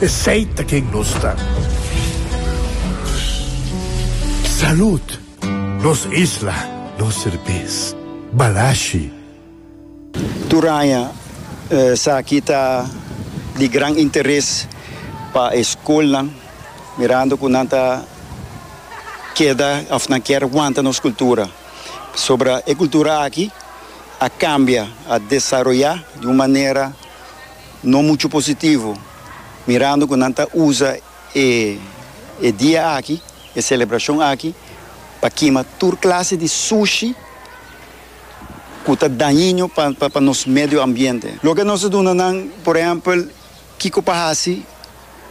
Esey ta ken nos ta. Salud! Nos isla, nos serbes. Balashi. Turaña, Esaki ta di gran interes pa e skolnan, mirando ku nan ta keda òf nan kier wanta nos kultura. Pasobra e kultura aki a kambia, a desaroyá di un manera. no mucho positivo mirando cu nan ta uza e e dia aki, e celebracion aki pa kima tur clase di sushi cu ta dañino pa nos medio ambiente. Loke nos ta duna nan, por ehempel, kico pa haci.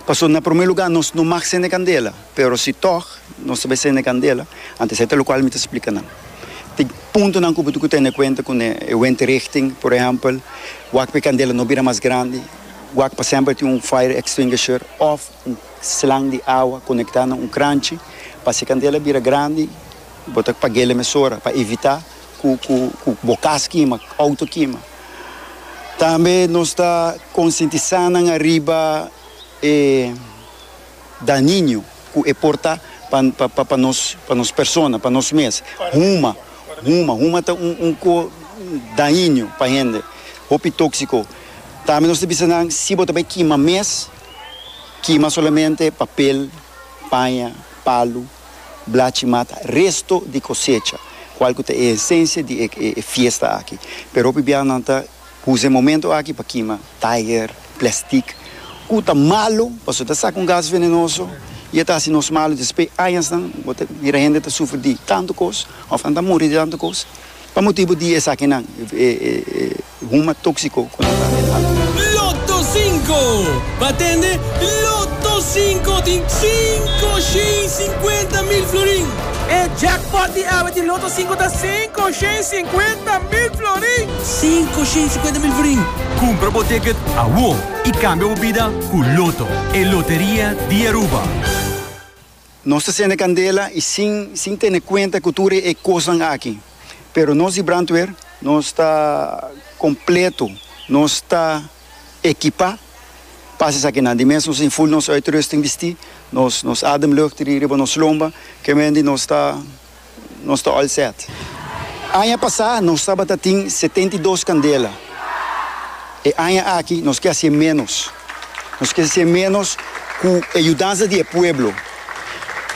Paso na prome luga nos no mag sende candela, pero si tog nos ta bay sende candela, antes esey ta locual mi ta splica nan. Tin puntonan cu bo tin cu tene cuenta cu ne e windrichting, por ehempel, wak pa e candela no bira mas grandi, wak pa semper tin un fire extinguisher of un slang di awa conecta na un cranchi, pa si e candela bira grandi bo ta paguel e mesora pa evita ku bo kas kima, ku outo kima. Tambe nos ta konsientisá nan ariba e daniño ku e por ta pa nos, pa nos persona, pa nos mes. Huma, huma, huma ta un un ko daiño pa hende, hopi tóksiko. Tambe nos ta bisa nan si bo ta bai kima mes, kima solamente papel, paña, palu. Blachi mata resto di cosecha, cual cu ta e esencia di e e fiesta aki. Pero hopi bia nan ta uza e momento aki pa kima taier, plastic, cu ta malo pasobra ta saca un gas venenoso y e ta haci nos malo. Despues añasnan bo ta mira hende ta sufri di tanto cos of nan ta muri di tanto cos. Pa motibu di esakinan, e huma tóksiko ku nan ta den altu. Lotto Sinko! Ba tende Lotto Sinko di sinku shei sinkuenta mil florin! E jackpot di awe di Lotto Sinko ta sinku shei sinkuenta mil florin! Sinku shei sinkuenta mil florin! Kumpra bo ticket awor i kambia bo bida ku Lotto, e loteria di Aruba! Nos ta sende kandela i sin sin tene kuenta ku tur e kosnan aki. Pero nos di brandweer nos ta kompleto, nos ta ekipá pa hasi esakinan. Di mes nos tin full nos uitrusting bistí, nos nos ademlucht riba nos lomba, ke mendi nos ta. nos ta all set. Aña pasá nos tabata tin setenta i dos kandela. E aña aki nos ke hasié ménos. Nos ke hasié ménos ku e yudansa di e pueblo.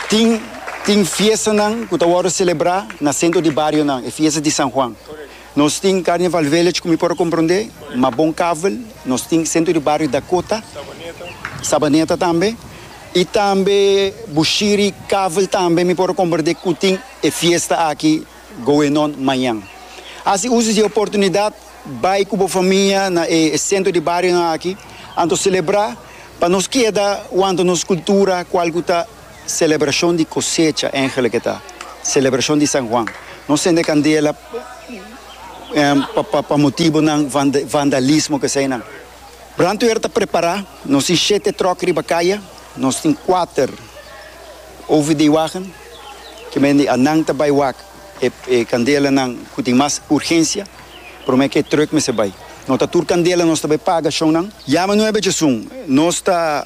Tin tin fiestanan ku ta wòrdu selebrá na sentro di barionan, e fiesta di San Juan. Nos tin Carnival Village ku mi por a komprondé, ma bon kavel nos tin sentro di bario Dakota, Sabaneta tambe. Y tambe Bushiri Kavel tambe mi por recomprende cu tin e fiesta aki going on mañan. Haci uso di e oportunidad bay cu bo famia na e centro di barionan aki anto celebra pa nos keda wanto nos cultura cual cu ta celebracion di cosecha eigenlijk eta celebracion di San Juan. No cende candela pa motibonan van vandalismo keseynan. Brandweer ta prepará, nos tin shete tròk riba kaya, nos tin kuater OVD-wagen, ke mende anan ta bai wak e kandelanan ku tin mas urgensia, promé ke trùk mester bai. No ta tur kandela, nos ta bai paga shonnan. Yama nuebe djesun nos ta.